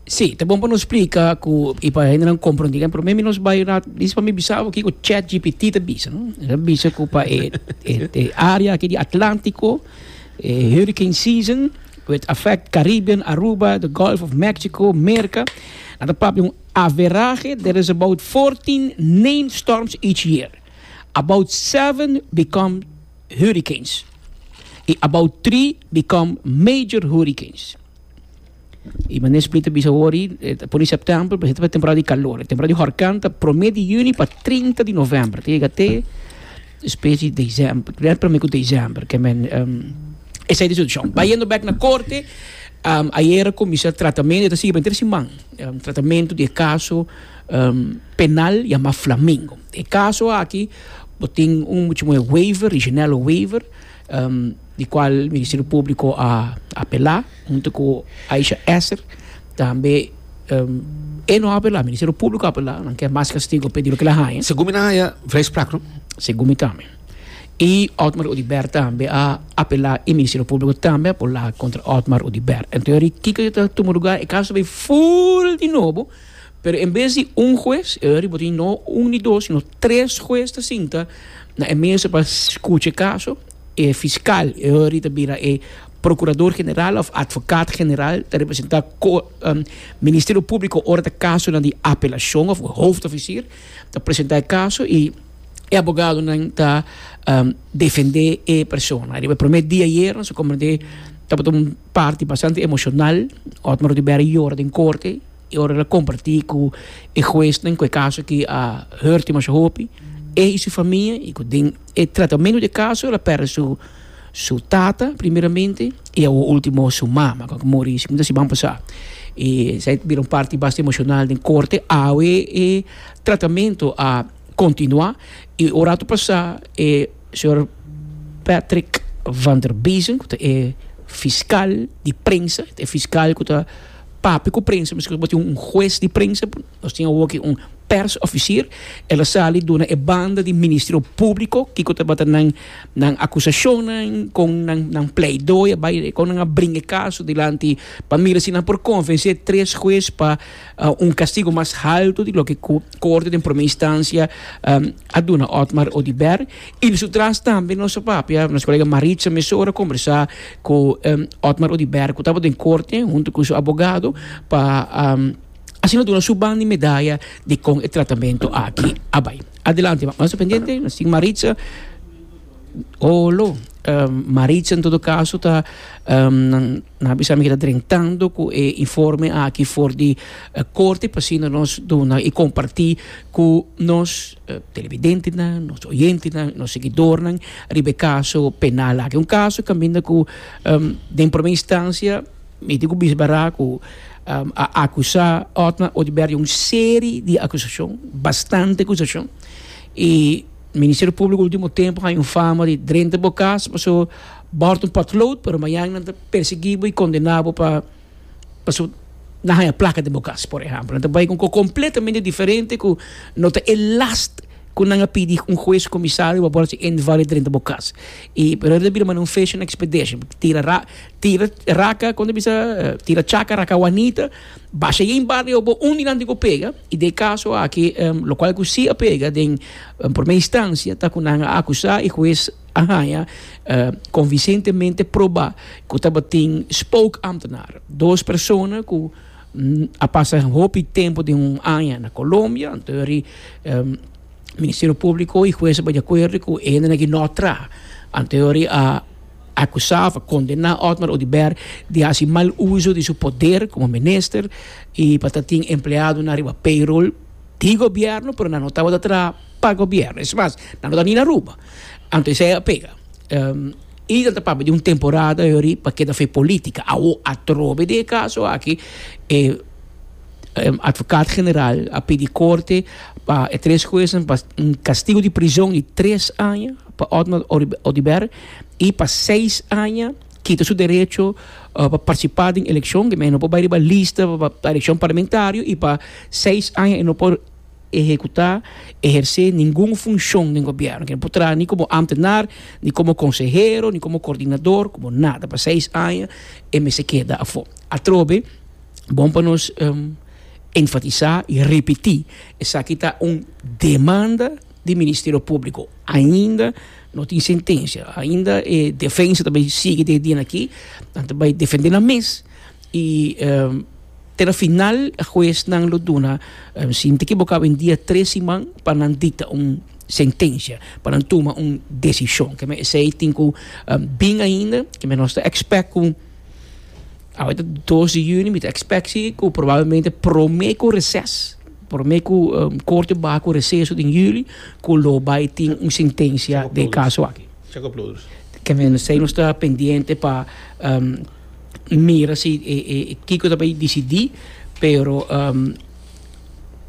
Sí, ta bon pa nos splika ku, i pa hendenan komprondí. Por esemempel, mi nos bai un ratu, disa pa mi bisabo kiko chatgpt ta bisa, no? E ta bisa ku pa e, e, e área aki di Atlántiko, e hurricane season, with effect Caribbean, Aruba, the Gulf of Mexico, Merka. A ta papia un averahe, there is about 14 named storms each year. About seven become hurricanes. I about three become major hurricanes. Y mane Split ta bisa wori, eh, ta pone septiembre, pero esta temporada di calor. E temporada di horkan ta prome di juni pa 30 di november. Ta yega te specie december, primer prome cu december. Que men, um, esa e di situacion. Bayendo bek na corte, um, ayera cuminsa tratamento, e ta sigui pa henter siman, um, tratamento di e caso, um, penal yama Flamingo. E caso aki bo tin un, bo chama waiver, regionale waiver. di cual Ministerio Público a apelá hunto cu Aisha Esser tambe e no a apelá Ministerio Público a apelá nan kier mas castigo pe di loke lo haña Segun mi nan haya vrijspraak no? segun mi tambe y Otmar Oduber tambe a apelá y Ministerio Público tambe a por laga contra Otmar Oduber entonces riba kiko yo ta tuma lugar e caso ta bay full di nobo. Pero en bes di un hues, e riba tin no un ni dos, sino tres hues ta sinta na e mesa pa skucha e kaso. E fiskal, e ori ta bira e prokurador general òf atvokat general, ta representá Ministerio Públiko ora ta kasonan di apelashon òf hooftofisier ta presentá e kaso i e abogadonan ta defendé e persona. Riba e promé dia ayer nos a komprendé tabata un parti bastante emoshonal. Otmar Oduber a yora den korte. Y ora el a comparti cu e huesnan cu e caso aki a hurt dimasha hopi e y su famia y cu den e tratamento di e caso el a perde su su tata primeramente y awo ultimo su mama cu a muri sicundo a siman pasa. Y esaki ta bira un parti basta emocional den corte awe e tratamento a continua y ora a ta pasa e señor Patrick Vanderbiesen cu ta e fiscal di prensa e fiscal cu ta Papia ku prensa, miskien ku bo tin un hues di prensa, nos tin awo aki un persofisier, el a sali duna e banda di Ministerio Públiko kiko tabata nan nan akusashonnan, kon nan nan pleidooi a bai, kon nan a bringa e kaso dilanti pa mira si nan por konvensé tres hues pa un kastigu mas haltu di loke ku Korte den Promé Instansia a duna Otmar Oduber. Y di su tras tambe nos a papia, nos colega Maritza Mesora conversa cu Otmar Oduber cu taba den corte hunto cu su abogado pa asina duna su ban di medaya di con e tratamento aki a bay. Adelante mama, nos ta pendiente, nos tin Maritza olo Maritza en todo caso ta nan a bisa mi ta drentando cu e informe aki for di corte pa asina nos duna y comparti cu nos. televidentenan, nos oyentenan, nos seguidornan riba e kaso penal aki. Un kaso kaminda ku den promé instancia mi tin ku bisa bará ku a akusá Otmar Oduber di un serie di akusashon, bastante akusashon, i Ministerio Públiko último tempu haña un fama di drenta bo kas, pasobra bo hòrta un potlood, pero mañana nan ta persiguí bo i kondená bo pa. Pasobra nan haña plaka den bo kas, por ehèmpel. Nan ta bai ku un kos kompletamente diferente ku no ta e las ku nan a pidi un hues o komisario pa por hasi invalid drenta bo kas. I por eso ta bira manera un fishing expedition. Tira ra, tira raka, kon ta bisa, tira chaka, raka wanita, basha ei bario bo un di nan tin ku pega, i den e kaso aki, lokual ku si a pega den promé instancia ta ku nan a akusá i hues a haña konvinsentemente probá ku tabatin spookambtenaar, dos persona ku a pasa hopi tempu den un aña na Colombia, anto yori Ministerio Públiko i hues a bai di akuerdo ku e hende na ki no traha. Anto yori a akusá òf a kondená Otmar Oduber di hasi mal uso di su poder komo minister i pa ta tin empleadonan riba payroll di gobierno pero nan no tabata traha pa gobierno. Es mas, nan no tabata ni na Aruba. Anto esei a pega. Um, y ta papia di un temporada yori pa keda fe política. Awo atrobe di e caso aki, e um, advocaat general a pidi corte pa e tres juezen pa un castigo di prison di tres aña pa Otmar Oduber y pa seis aña kita su derecho uh, pa participa den eleccion, di manera e no por bai riba lista pa eleccion parlamentario y pa seis aña e no por ehekutá, ehersé ningun funshon den gobièrnu. Ke no por traha ni komo ámtenar, ni komo konsehero, ni komo kordinador, komo nada. Pa seis aña e mester keda afó. Atrobe, bon pa nos enfatisá i repetí, esaki ta un demanda di Ministerio Públiko. Ainda no tin sentensia, ainda e defensa ta bai sigui den e dianakí, nan ta bai defendé nan mes. I te na final e huesnan lo duna, si N ta kibokado, un dia tres siman pa nan dikta un sentensia, pa nan tuma un desishon. Ke esei tin ku bin ainda. Keme nos ta ekspèk ku awe ta dos di yüni, mi ta ekspèk si ku probablemente promé ku reses, promé ku korte baha ku reseso den yüli ku lo bai tin un sentensia den e kaso aki. Keme esei nos ta pendiente pa. mira si kiko ta bay disidí, pero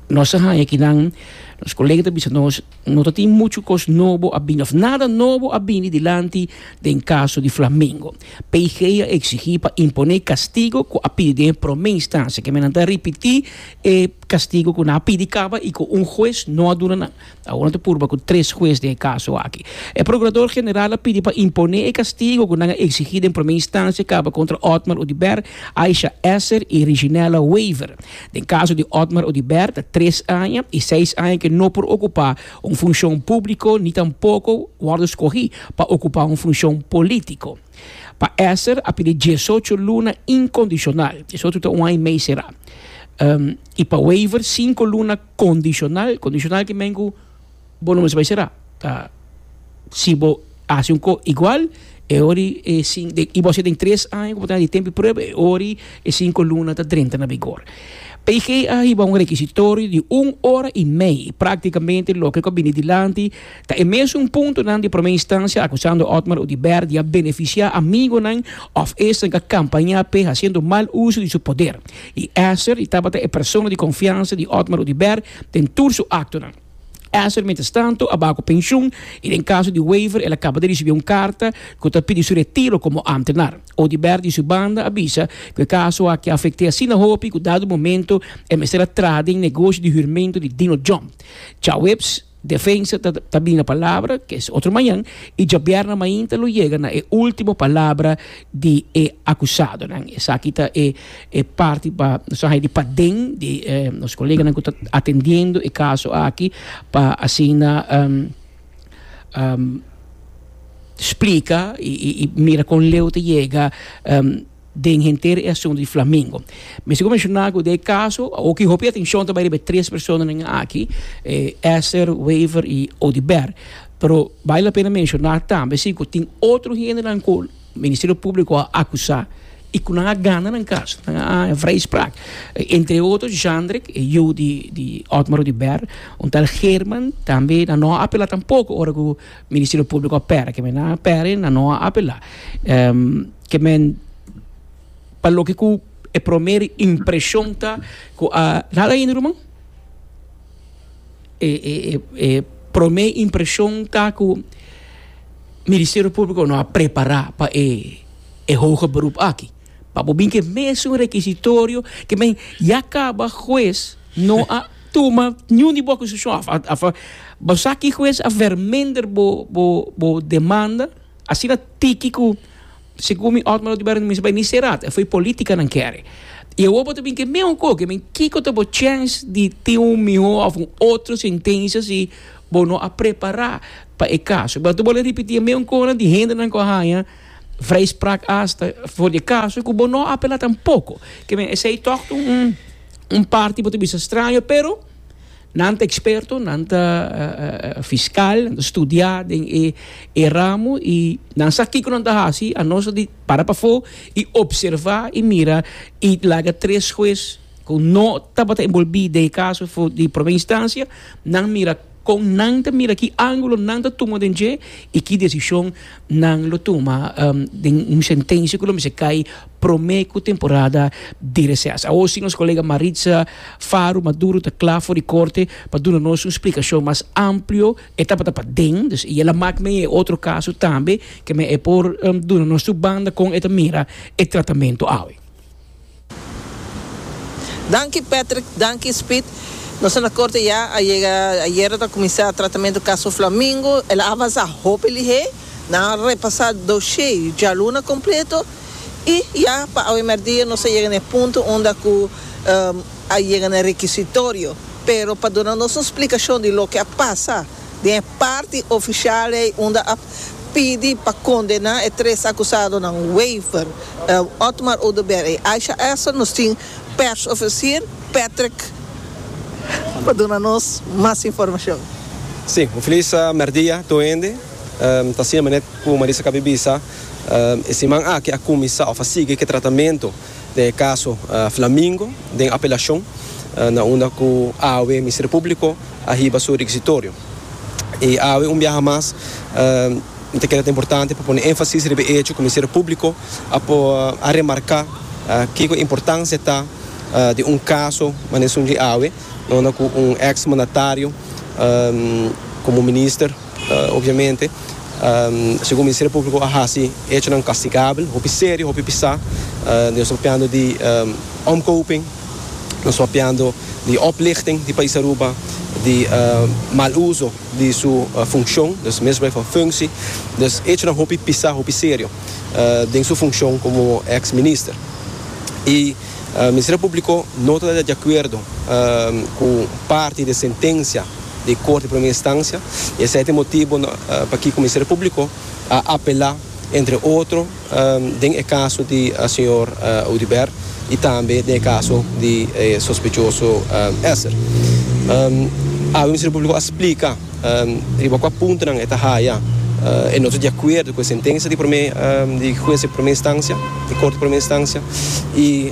nos a haña aki nan, nos colega ta bisa nos, no ta tin muchu cos nobo a bini, of nada nobo a bini dilanti den caso di Flamingo. PG a exigí pa impone e castigo cu a pidi den e prome instancia, kende nan ta ripití e castigo cu nan a pidi caba y cu un huez no a duna nan. Awor nan ta purba ku tres hues den e kaso aki. E prokurador general a pidi pa imponé e kastigu ku nan a eksigí den promé instansia kaba kontra Otmar Oduber, Aisha Esser i Reginella Wever. Den kaso di Otmar Oduber ta tres aña i seis aña ku e no por okupá un funshon públiko ni tampoko wòrdu skohí pa okupá un funshon polítiko. Pa Esser a pidi diesocho luna inkondishonal, diesocho ta un aña i mei será, i pa Wever sinku luna. Condicional, condicional ki men cu bo no mester bay sera. Ta si bo haci un co igual e hori e cin den y bo haci den tres aña cu bo ta den di tempo di prueba e hori e cinco luna ta drenta na bigor. PG a hiba un requisitorio di un ora y mei practicamente loke cu a bini dilanti Ta e mesun puntonan di promé instancia acusando Otmar Oduber di a beneficia amigonan of esten ka campaña p'e haciendo mal uso di su poder y ester di tabata e persona di confiansa di Otmar Oduber den tur su actonan. Ester mientestanto a baha cu pensioen y den caso di Wever el a caba di ricibi un carta cu ta pidi su retiro como ambtenaar. Oduber di su banda a bisa cu e caso aki a afecté asina hopi cu dado momento e mester a traha den negocio di huurmento di Dino Jump. Tjaueps. Defensa ta ta bin na palabra, ke es otro mañan, i djabièrna mainta lo yega na e último palabra di e akusadonan. Esaki ta e e parti pa nos a haña di paden di nos koleganan ku ta atendiendo e kaso aki pa asina splika i mira kon leu ta yega. den henter e asuntu di Flamingo. Mester ku menshoná ku den e kaso oki hopi atenshon ta bai riba e tres personanan aki, e Esther, Wever i Odibert. Pero bai la pena menshoná tambe si ku tin otro hendenan ku Ministerio Públiko a akusá i ku nan a gana nan kas, nan a haña vrijspraak. Entre otro Zhandrick, e yu di di Otmar Odibert, un tal German tambe nan no a apelá tampoko ora ku Ministerio Públiko a pèra. Kiemen nan a pèra nan no a apelá. Ke men pa loke ku e promer impreshon ta ku a nada ainda ruman? E e e e promer impreshon ta ku Ministerio Públiko no a prepará pa e e hoge beroep aki. Pa bo bin ku e mesun rekisitorio ke men ya kaba hues no a tuma niun di bo akusashon. Bo sa ki hues a verminder bo bo bo demanda? Asina tiki ku, segun mi Otmar Oduber a mester bai ni será, ta foi polítika nan kere. I awor bo ta bin ke mesmo koke, mi kiko ta bo chèns di tin un mihó òf un otro sentensia si bo no a prepará pa e kaso? Bo ta bole ripití e mesmo konan di hendenan ku a haña vrijspraak asta for di e kaso ku bo no a apelá tampoko. Ke men, esei tòg un parti ku bo ta bisa straño, pero. Nan ta eksperto, nan ta fiskal, nan ta studiá den e ramo i nan sa kiko nan ta hasi. Anos a di para pafó i opservá i mira i laga tres hues ku no tabata enbolbí den e kaso di promé instansia, nan mira kon nan ta mira, ki ángulo nan ta tuma den dje i ki desishon. nan lo tuma den un sentencia cu lo mester cay prome cu temporada di reces. Awor si nos colega Maritza Faro Maduro ta cla for di corte pa duna nos un splicacion mas amplio, e tabata paden, dus y el a mak mee e otro caso tambe, ke men e por duna nos tur banda con e ta mira e tratamento awe. Danki Patrick danki Speed nos a na corte ya a yega ayer a ta cuminsa tratamento caso Flamingo el a avansa hopi lihé nan a repasa doshé y djaluna completo y ya pa awe merdia nos a yega n'e punto unda cu a yega n'e requisitorio pero pa duna nos un splicacion di loke a pasa den e parti ofisial ei unda a pidi pa kondená e tres akusadonan Wever, Otmar Oduber i Aisha Essel, nos tin pèrsofisier Patrick pa duna nos mas informashon. Sí, un feliz mèrdia tur hende. Ta asina manera ku Marisa kab'e bisa, e siman aki a kuminsá òf a sigui ke tratamentu den e kaso Flamingo den apelashon na unda ku awe Ministerio Públiko a hiba su rekisitorio. I awe un biaha mas mi ta keda ta importante pa pone énfasis riba e echo ku Ministerio Públiko a por a remarká kiko e importansia ta di un kaso manesun dje awe na unda ku un eks mandatario komo minister, Obviamente, segun Ministerio Público a haci hechonan castigabel, hopi serio, hopi pisá. Nos ta papiando di omkoping, nos ta papiando di oplichting di pais Aruba, di mal uso di su funcion, dus misbruik van functie. Dus hechonan hopi pisá, hopi serio den su funcion como ex minister. Y Ministerio Público no ta di acuerdo cu parti di e sentencia. di Kort di Primer Instancia i esei ta e motibu pakiko Ministerio Públiko a apelá entre otro den e kaso di señor Audibert i tambe den e kaso di e sospechoso Esser. Awe Ministerio Públiko a splika riba kua puntonan e ta haya e no ta di akuerdo ku e sentensia di Primer di Hues di Primer Instancia di Kort di Primer Instancia i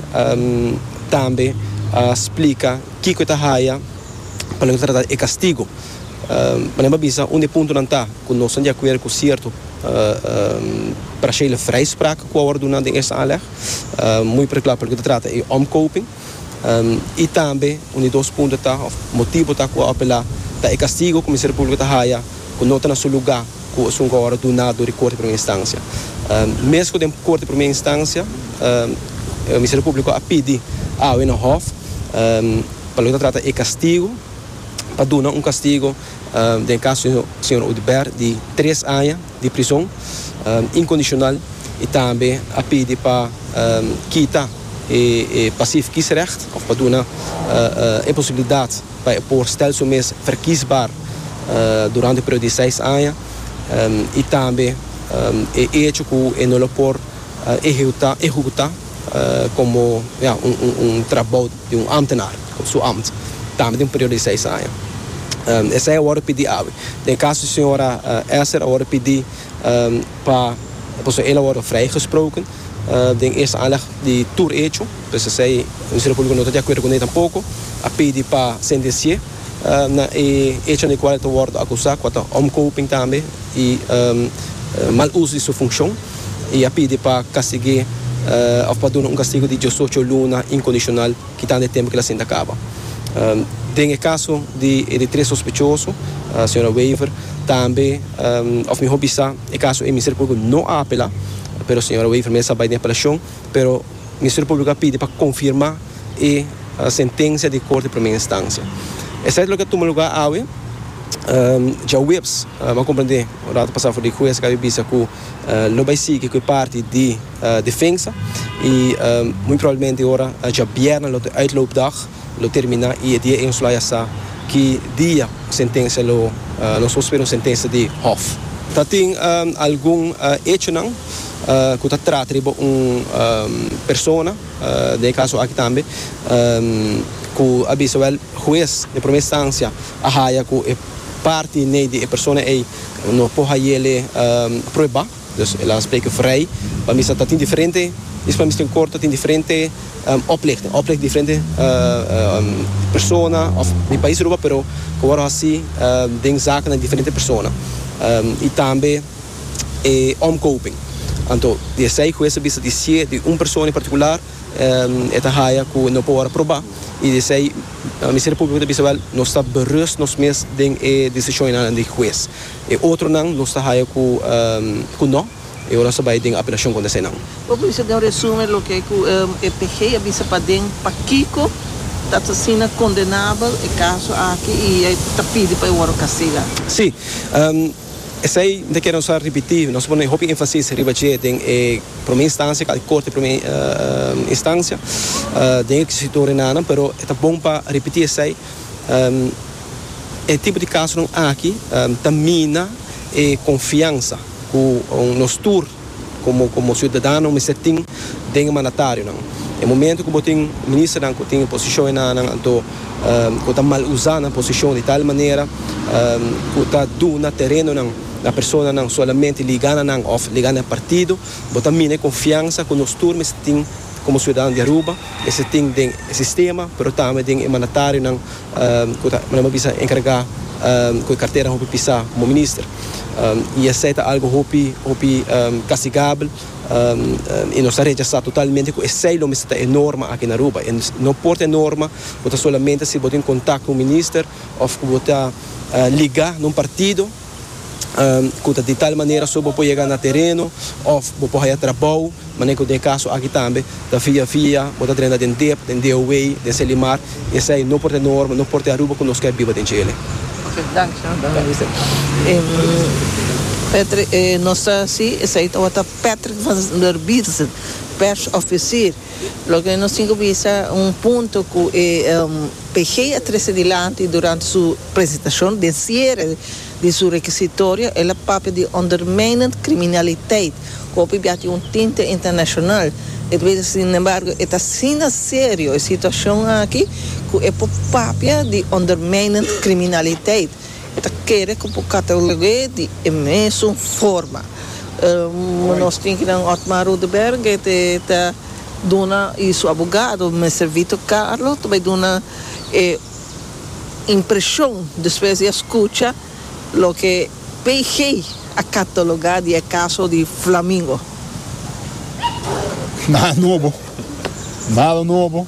tambe a splika kiko e ta haya pa nan trata e kastigo. Pa nan babisa un di e puntonan ta ku nos ta di akuerdo ku sierto parashele vrijspraak ku a wòrdu duna den esta aanleg, muy particular pa loke ta trata e omkoping, i tambe un di dos punto ta òf motibo ta ku a apelá ta e kastigo ku Ministerio Públiko ta haya ku no ta na su lugá. ku asuntu awor duná dor di Korte Primera Instancia. Mes ku den Korte Primera Instancia Ministerio Públiko a pidi awe na Hof pa lo ta trata e kastigu, pa duna un kastigu den e kaso di señor Audibert di tres aña di prison inkondishonal i tambe a pidi pa kita e pasief kiesrecht òf pa duna e posibilidat Pa e por stel su mes verkiesbaar durante e periodo di seis aña y tambe e hecho cu e no lo por ehecuta como ya un trabao di un ambtenaar su ambt tambe den un periodo di seis aña. Esey a worde pidi awe. Den e caso di señora Esther a worde pidi pa pasobra el a worde vrijgesproken Den es aandacht di tur hecho, pes esey e Ministerio Publico no ta di acuerdo cu ney tampoco, a pidi pa sentenci'e na e hecho na e cual e ta wordo acusa, cua ta omkoping tambe y mal uso di su funcion, y a pidi pa castig'e of pa duna un castigo di diosocho luna incondicional kitando e tempo cu el a sinta caba. Den e caso di e di tres sospechoso, Sra. Wever, tambe of mihor bisa e caso e Ministerio Publico no a apela, Pero señora Wever mester a bai den apelacion, pero Ministerio Publico a pidi pa confirma e sentencia di Corte di Primer Instancia. Esaki loke a tuma lugar awe Djaweps, bo a comprende un rato pasa for di Hues a caba di bisa cu lo bai sigui cu e parti di Defensa y muy probablemente ora Djabierna lo ta uitloopdag. Lo terminá i e dia e nos lo haya sa ki dia sentensia lo nos lo spera un sentensia di hòf. Ta tin algun echonan ku ta trata riba un persona, den e kaso aki tambe, ku a bisa wèl hues den promé instansia a haya ku e parti nei di e persona ei no por hayele prueba. Dus el a spreke vrij, pa misa ta tin diferente is pa misa tin kor ta tin diferente oplichting, oplicht diferente persona òf di pais Aruba pero ku wòrdu hasi den zaken na diferente persona i tambe e omkoping. Anto di esei ku hues a bisa di sié di un persona en partikular e ta haya ku no por wòrdu aprobá i di esei Ministerio Públiko ta bisa wèl nos ta berust nos mes den e desishonnan di hues. E otronan nos ta haya ku no e ora nos ta bai den apelacion contra eseinan. Bo por bisa den un resumen loke ku e PG a bisa paden pakiko ta asina condenabel e caso aki y e ta pidi pa e worde castiga? Sí. Esei no ta kere nos a ripiti. Nos a pone hopi enfasis riba dje den e prome instancia kal corte prome instancia den e kisito renanan pero e ta bon pa ripiti esei. E tipo di kasonan aki ta mina e konfiansa ku nos tur komo siudadanonan mester tin den e mandatarionan. E momentu ku bo tin ministernan ku tin e posishon enannan anto ku ta mal usa nan posishon di tal manera ku ta duna terenonan na personanan solamente liga na nan òf liga na e partido, bo ta mina e konfiansa ku nos tur mester tin komo siudadano di Aruba, mester tin den e sistema pero tambe den e mandatarionan. ku ta manera mi a bisa enkargá ku e kartera hopi pisá komo minister i esei ta algu hopi hopi kastigabel i nos ta rechasá totalmente ku esei lo mester ta e norma aki na aruba i no por ta e norma ku ta solamente si bo tin kontak ku un minister òf ku bo ta ligá na un partido. ku ta di tal manera so bo por yega na tereno òf bo por haya trabou, manera ku den e kaso aki tambe ta via via bo ta drenta den dep, den DOA, den Selimar, i esei no por ta e norma, no por ta e Aruba ku nos ke biba den Chile. Oke, danki señor Minister. Patrick, nos ta hasi esei tabata Patrick van der Bierzen, persofisier. Loke nos tin ku bisa un punto ku e PG a trese dilanti durante su presentashon den siere di su rekisitorio, el a papia di ondermijnend kriminaliteit ku hopi bia tin un tinte internashonal. E ta bisa sin embargo e ta asina serio e situashon aki ku e por papia di ondermijnend kriminaliteit. E ta kere ku por catalogu'é di e mesun forma. Nos tin ki nan Otmar Rudeberger te ta duna i su abogado Mister Vito Carlo ta bai duna e impreshon despues di a skucha loke PG a katalogá di e kaso di Flamingo. Nada nobo. Nada nobo.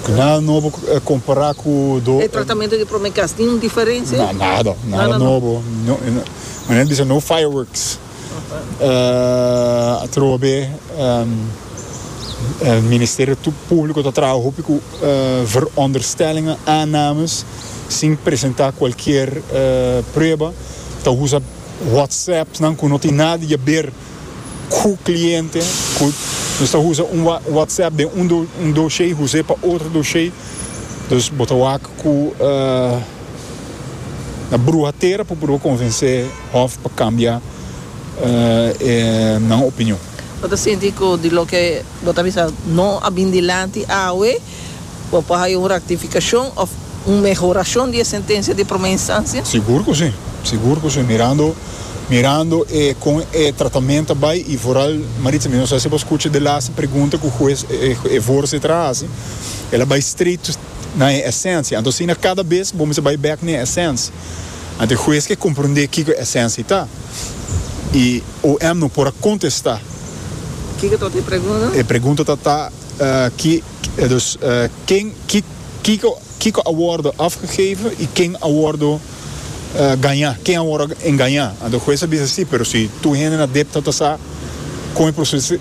Nada nobo compara cu do. E tratamento di prome cas tin un diferencia? Na, nada, nada nobo. Manera bisa no fireworks. Atrobe Ministerio Publico ta traha hopi cu veronderstellingen, aannames, sin presenta cualkier prueba. Ta usa whatsapps nan cu no tin nada di yaber. cu cliente cu nos ta usa un WhatsApp den un doshey huse pa otro doshey dus bo ta wak cu na bruha tera pa purba convence hof pa cambia e nan opinion. Bo ta sinti cu di loke bo ta bisa no a bin dilanti awe. Bo por haya un rectificacion of un mehoracion di e sentencia di prome instancia? Sigur cu si, sigur cu si. Mirando, mirando e con e tratament ta bay y vooral Maritza, mi no sa si bo scucha de laatste pregunta cu hues, e voorzitter a haci, el a bay straight na e esencia. Anto asina cada bes bo mester bay back na e esencia. Anto e hues ke comprende kico e esencia ta y OM no por a contesta. Kico ta ota e pregunta? E pregunta ta ta. Dus, ken, ki, kiko, kiko a wordo afgegeven y ken a wordo gaña, ken a wordo engaña. Anto e hues a bisa si, pero si tur hende na dep ta ta sa con e proceso,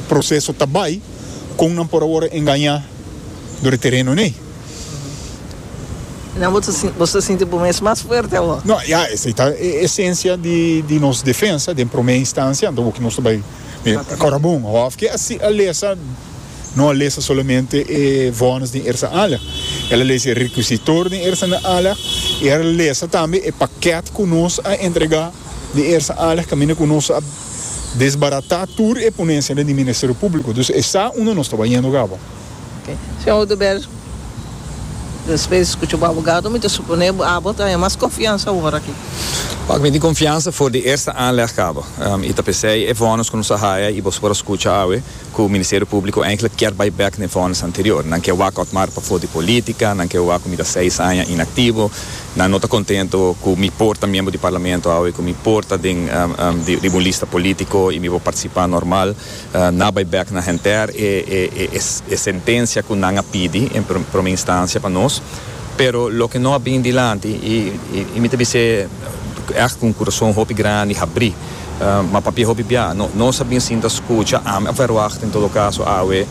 proceso ta bay, con nan por a wordo engaña door e tereno n'ey? Nan bo ta sinti, boso ta sinti bo mes mas fuerte awor? No, ya esey ta e esencia di nos defensa den prome instancia, anto bo ki nos ta bay. Mi kòrda bon, hòf ke así a lesa no a lesa solamente e vònes den Ersa Ala, el a lesa e rekusitor den Ersa na Ala i el a lesa tambe e pakèt ku nos a entregá den Ersa Ala kaminda ku nos a desbaratá tur e ponesia den di Ministerio Públiko. Dus esei unda nos tabata yendo kaba. Señor Oduber, despues di scucha bo abogado, mi ta supone bo abo ta haña mas confiansa awor aki. Pak mi tin confiansa for di eerste aanleg cabo y ta pesey e vonnis cu nos a haya y boso por a scucha awe cu Ministerio Publico eindelijk kier bay bek na e vonnis anterior. Nan kier wak Otmar pa for di politica, nan kier wak cu mi ta seis aña inactivo, nan no ta contento cu mi por ta miembro di Parlamento awe, cu mi por ta den riba un lista politico y mi por participa normal. Na bay bek na henter e sentencia cu nan a pidi en prome instancia pa nos, pero loke no a bini dilanti y y mi ta bis'e echt cu un curason hopi grandi habri, ma papia hopi bia nos a bin sinta scucha, ami a verwacht en todo caso awe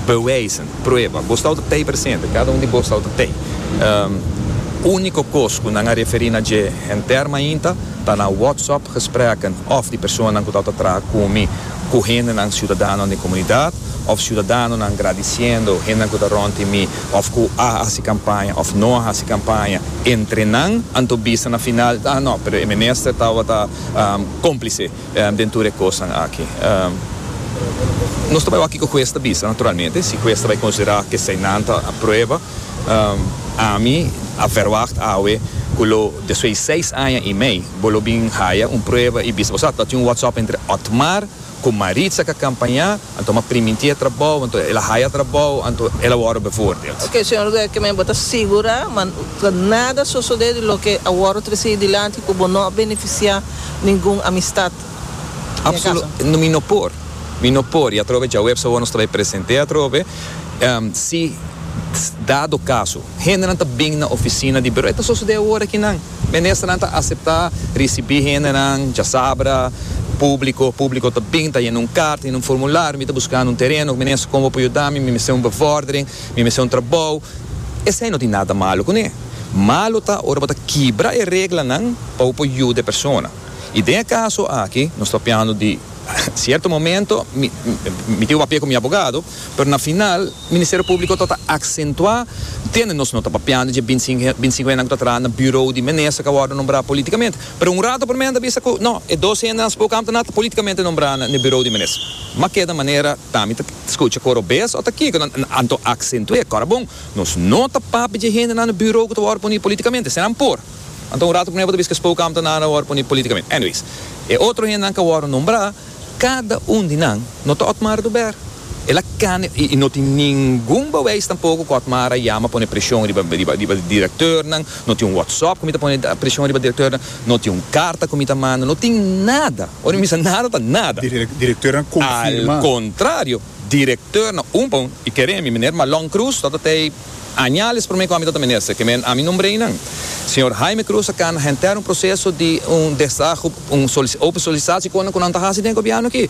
bewijzen, prueba, bo stau ta tey presente, cada un di bo stau ta tey, unico cos cu nan a referi na dje henter mainta, Ta na WhatsApp gesprekken of di personanan cu tawata traha cu mi cu hendenan ciudadanonan den comunidad of ciudadanonan gradiciendo hendenan cu ta rond di mi of cu a haci campaña of no a haci campaña entre nan. Anto bisa na final ah no pero e minister tawata complice den tur e cosnan aki. Nos ta bay hoor kico huez ta bisa naturalmente si huez ta bay considera cu eseinan ta prueba. Ami a verwacht awe ku lo despues di seis aña i mei bo lo bin haya un prueba i bisa. Osea, ta tin un whatsapp entre Otmar ku Maritza ku a kampañá, anto m'a primintí e trabou, anto el a haya trabou, anto el a wòrdu bevoordeeld. Oké, señor Werkeman, bo ta sigurá man ta nada sosodé di loke a wòrdu tresí dilanti ku bo no a benefisiá ningun amistat? Mi no por, mi no por, y atrobe djawe epsa awor nos ta bay presente atrobe, si dado caso hendenan ta bin na oficina di Bureau, e ta sosode awor akinan, Ministernan ta acepta ricibi hendenan, djasabra, publico, publico ta bin, ta yena un carta, yena un formulario, mi ta buscando un tereno, Minister como bo por yuda mi, mi mester un bevordering, mi mester un trabao, esai no tin nada malo cune, malo ta ora bo ta kibra e reglanan pa bo por yuda e persona. I den e kaso aki nos ta piando di sierto momento mi mi tin papia ku mi abogado pero na final Ministerio Públiko ta ta aksentuá entiende nos no ta papiando dje binti sinku binti sinku hendenan ku ta traha na buro di minister ku a wòrdu nombrá politikamente pero un rato promé nan ta bisa ku no e dos hendenan spokam ta na ta politikamente nombrá na e buro di minister m'a keda manera ta mi ta skucha kor robes o ta kiko nan anto aksentu'é kòrda bon nos no ta papia dje hendenan na buro ku ta wòrdu puni politikamente esei nan por. Anto un rato p'nuevo ta biska spou kamp ta nada wòrdu poni politikament. Anyways, e otro hendenan ka wòrdu nombrá, kada un di nan no ta Otmar du Ber. El a kane i no tin ningun beweis tampoko ku Otmar a yama pone preshon riba riba e direktornan, no tin un wòtsòp ku mi ta pone preshon riba direktornan, no tin un karta ku mi ta manda, no tin nada. Ora mi bisa nada ta nada. Direktornan konfirmá. Al kontrario, direktornan un pa un, i kere mi, Meneer Malong Croes, tototei. Añales prome cu ami ta ta minister, que men ami nombrei nan, señor Jaime Cruz a cana henter un proceso di un desahogo, un open solicitatie con nan cu nan ta haci den e gobierno aki.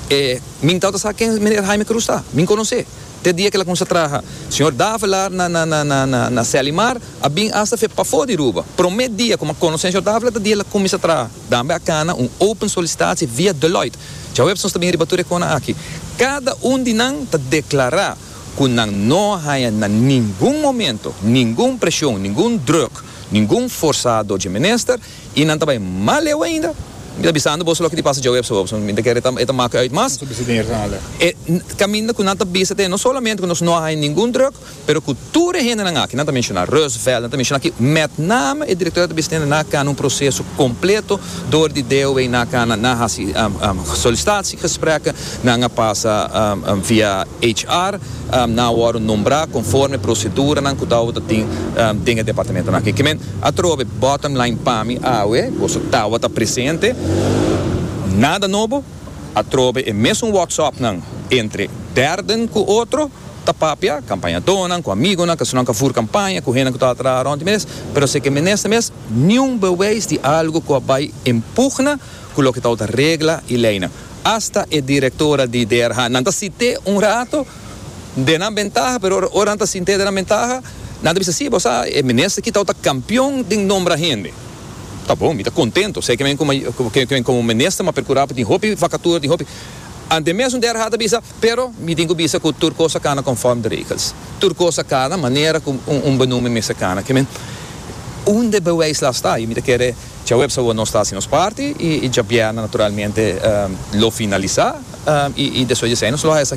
E min tau ta sa ken meneer Jaime Cruz ta, min conoce te dia cu el a cuminsa traha. Señor Davelaar na na na na na Selimar a bin hasta fe pafo di Ruba. Prome dia cu mi a conoce señor Davelaar ta dia el a cuminsa traha. Tambe a cana un open solicitatie via Deloitte. Djaweps nos ta bin riba tur e conan aki. Cada un di nan ta declara. ku nan no a haña na ningun momento ningun preshon, ningun drùk, ningun forsá dor dje minister, i nan ta bai mas leu ainda, mi ta bisando boso loke di pasa djawe apso apso, mi ta kere e ta mak'e ùit mas, e kaminda ku nan ta bisa te no solamente ku nos no a haña ningun drùk, pero ku tur e hendenan aki, nan ta menshoná Roosevelt, nan ta menshoná aki, mèt name e direktor a ta bisa te nan a kana un proseso kompleto dor di DOW nan a kana, nan a hasi solisitasie, gesprekken. Nan a pasa via HR, nan a wòrdu nombrá konforme proseduranan ku tawata tin den e departamentonan aki. Kimen atrobe bottom line pa mi awe, boso tawata presente, nada nobo, atrobe e mesun wòksòpnan entre dèrden ku otro ta papia, kampañadónan ku amigonan, kasunan ka fur kampaña, ku hendenan ku tabata traha rònt di mes, pero si e ke minister mes, niun bewys di algu ku a bai empugna ku loke tabata regla i leinan. hasta e directora di DRH. Nan ta sint'é un rato den nan bentaha, pero ora ora nan ta sint'é den nan bentaha, nan ta bisa, sí, bo sa, e minister aki tabata campeon den nombra hende. Ta bon, mi ta contento, esei cu mi cu mi cu cu mi como minister m'a percura pa tin hopi vacatura, tin hopi. Anto mesun DRH ta bisa, pero mi tin cu bisa cu tur cos a cana conforme de regels. Tur cos a cana manera cu un un benoemde mester cana. Cu mi, unda bewijs la sta? Mi ta kere Djaweps awo nos ta hasi nos parti i djabièrnè naturalmente lo finalisá i despues di esei nos lo hasi.